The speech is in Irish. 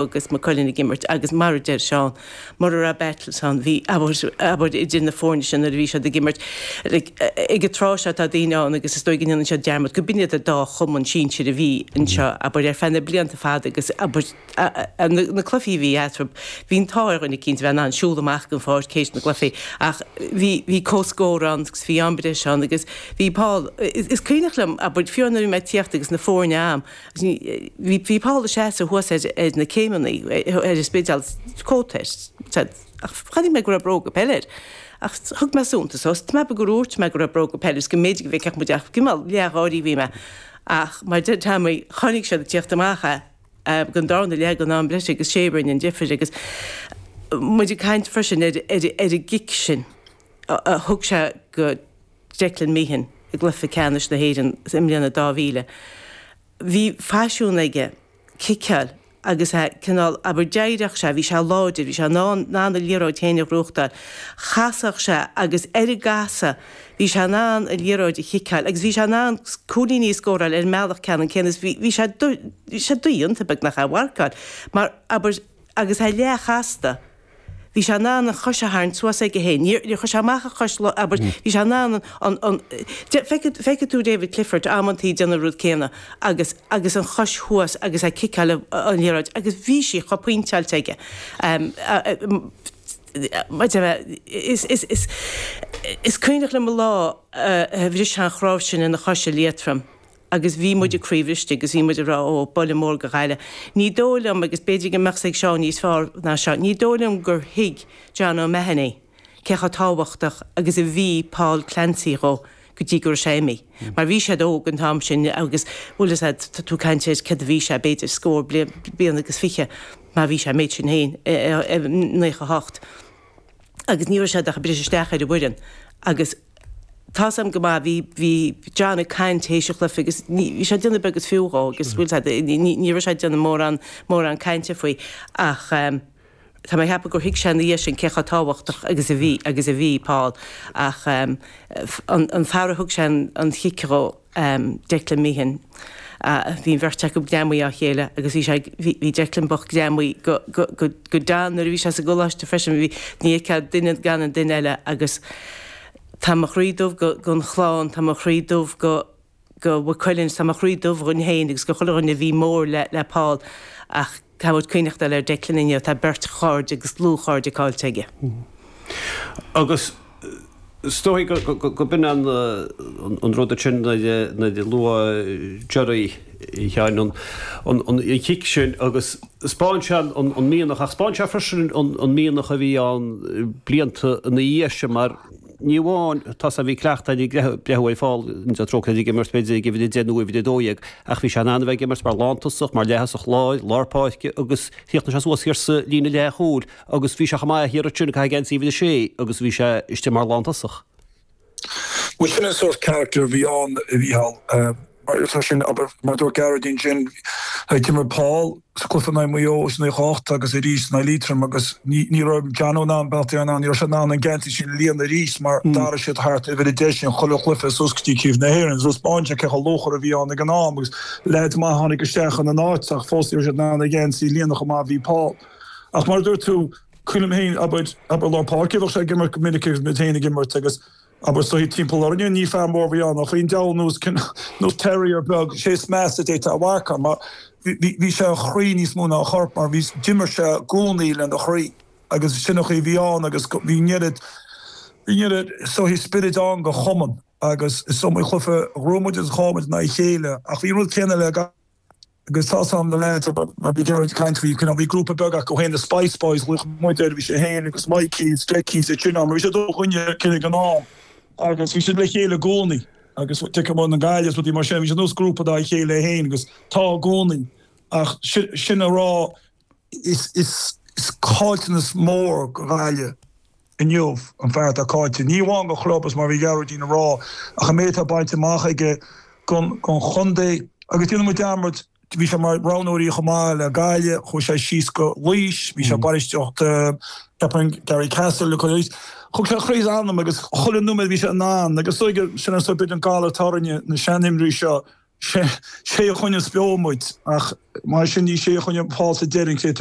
agus Maigh Cuilinn ag imirt agus mar a deir Seán, mura raibh battles ann, bhí, abair, idir na foirne sin nuair a bhí siad ag imirt. Ag an tráth seo tá daoine ann agus is dóigh go ndéanann siad dearmad go b'iad an dá chumann sinsir a bhí anseo, abair, ar feadh na blianta fada agus na cluichí a bhí eatarthu, bhí an t-ádh ar dhuine eicínt a bheith in ann siúl amach den pháirc théis na gcluichí ach bhí comhscór ann agus bhí am breise ann agus bhí Paul, is cuimhneach liom, abair, fiú nuair a bhí mé ag tíocht agus na foirne am. Bhí Paul ag seasamh thuas ar na céimeannaí ar an Spidéal cóta air said ach chonaic mé go raibh bróga peile air ach thug mé suntas dhó. Is maith gur dhúirt mé go raibh bróga peile air is go mb'fhéidir go bhfeicfeadh muid é ach cineál leath-gháirí a bhí mé ach mar a deir Teaimín chonaic siad ag teacht amach é ag an darna leath ag an am breise agus 'sé a rinne an difir agus muid ag caint freisin ar an gcic sin a thug sé go Declan Meehan i gcluiche ceannais na hÉireann i mbliain a, 2000. Bhí faisiún aige ciceáil agus é cineál, abair, d'éiríodh sé, bhí sé láidir, bhí sé in ann in ann a liathróid féin a ghnóthachtáil. Chasfadh sé agus ar an gcasadh bhí sé in ann an liathróid a chiceáil agus bhí sé in ann cúilíní a scóráil ar an mbealach ceannann céanna is bhí sé sé dodhéanta beagnach é a mharcáil mar, abair, agus é leath-chasta. Bhí sé in ann an chois a tharraingt suas aige féin. Níor, níor chuir sé amach a chois lá, abair, bhí sé in ann an, an, de, feicfidh, feicfidh tú David Clifford amanntaí ag déanamh an rud céanna agus, agus an chois thuas agus é ag ciceáil an, an liathróid agus bhí sí chomh pointeáilte aige. Ehm, ahm, maith dhom é, is, is, is, is cuimhneach liom lá a bhris sé an chnáimh sin ina chois i Liatroim. agus bhí muid ag craobh istigh agus bhí muid ag rá ó, buille mór go Ghaillimh. Ní dóigh liom, agus b'fhéidir go mbeadh 's ag Seán níos fearr ná seo, ní dóigh liom gur thuig John O'Mahony cé chomh tábhachtach agus a bhí Paul Clancy dhó go dtí go raibh sé imithe. Mar bhí siad óg an t-am sin agus, bhuel, is ea, tá tú ag caint ar céard a bhí sé, b'fhéidir scór bliain, bliain agus fiche má bhí sé an méid sin féin, naocha hocht agus ní raibh siad ach ag briseadh isteach ar an bhfoireann agus, Tá 's a'm go maith, bhí, bhí John ag caint théis an chluife agus ní, bhí sé ag déanamh beag is fiú dhó agus bhfuil sé, ní, ní, ní raibh sé ag déanamh mórán, mórán cainte faoi ach ehm, tá mé ag ceapadh gur thuig sé ina dhiaidh sin cé chomh tábhachtach agus a bhí, agus a bhí Paul ach ehm, an, an fear a thug sé an, an chic dhó. um Declan Meehan. Uh bhí an bheirt acu greamaithe dá chéile agus bhí sé ag, bhí, bhí Declan bocht greamaithe go, go, go, go John nuair a bhí sé sa gcoláiste freisin. Bhí, ní fheicfeá duine gan an duine eile agus tá mo chroí dubh go, gon chlann, tá mo chroí dubh go, go Mhaigh Cuilinn, tá mo chroí dubh dhuinn fhéin agus go chuile dhuine a bhí mór le, le Paul ach. tá muid ag cuimhneachtáil ar Declan inniu, tá beirt chairde agus dlúthchairde caillte aige. Agus is dóigh gurb in an rud sin nuair a luaigh Gerry cheana an chic sin agus 'spáin sé an mianach ach 'spáin sé freisin an mianach a bhí ann blianta ina dhiaidh sin mar, Ní amháin tá's agat bhí cleachtadh ag breathnú ar Paul sa treo céanna ag imirt, b'fhéidir ag uimhir a deich nó uimhir a dó dhéag, ach bhí sé in ann a bheith ag imirt mar lántosach, mar leathosach láir, lár páirce agus chríochnaigh sé suas thiar sa líne leathchúil agus bhí sé chomh maith thiar ansin ag caitheamh geansaí uimhir a sé agus bhí sé istigh mar lántosach. Bhuel sin an sórt carachtar a bhí ann a Mhíchíl. Mar atá sin, abair, mar a dúirt Gearóidín sin, d'imir Paul sa cluiche in aghaidh Maigh Eo, is in aghaidh Chonnacht agus arís in aghaidh Liatroim agus ní raibh Johnno in ann, Beartlaí in ann, ní raibh siad in ann an geansaí sin a líonadh arís mar d'athraigh siad thart uimhir a deich sin chuile chluiche suas go dtí craobh na hÉireann. So 'spáineann sé cé chomh luachmhar a bhí ann ag an am agus leaids maithe a tháinig isteach ina n-áit ach fós ní raibh siad in ann an geansaí a líonadh chomh maith a bhí Paul. Ach mar a dúirt tú, cuimhním féin, abair, lár páirce a bheadh sé ag imirt go minic agus muid féin ag imirt agus Abair sórt timpeall orainne, ní fear mór a bhí ann ach bhí an diabhal nós cineál, nós terrier beag, sé is measa a d'fhéadfá a mharcáil mar bhí, bhí sé a chroí níos mó ná a chorp mar bhí, d'imir sé i gcónaí lena chroí agus sin an chaoi a bhí ann agus go, bhí an oiread, bhí an oiread sórt spioraid ann don chumann agus is iomaí cluiche a ghnóthaigh muid agus a chaill muid in aghaidh a chéile ach bhí an rud céanna le gach. Agus tá's agam na leaids ag caint faoi, you know, bhí grúpa beag acu féin, The Spice Boys, luaigh muid é, bhí sé féin agus Mikey, is Decky sa tinneall, mar bhí siad ó Ghaoth Dobhair ag an am agus bhí siad le chéile i gcónaí agus teamanna Gaillimh is rudaí mar sin, bhí siad nós grúpa dá chéile féin agus tá i gcónaí ach sin a rá, Is caillteanas mór do Ghaillimh inniu an fear atá caillte, ní amháin don chlub, is mar a bhí Gearóidín a rá, ach an méid atá bainte amach aige don chontae. Agus déanann muid dearmad, bhí sé mar roghnóir chomh maith le Gaillimh, chuaigh sé síos go Laois, bhí sé bainistíocht ceapaim Garrycastle a chuir, thug sé croí is anam agus chuile nóiméad bhí sé in ann agus sin an galar tairne na sean-imreoirí seo. sé é a choinnigh beo muid ach mar sin ní sé a choinnigh Paul sa deireadh an chéad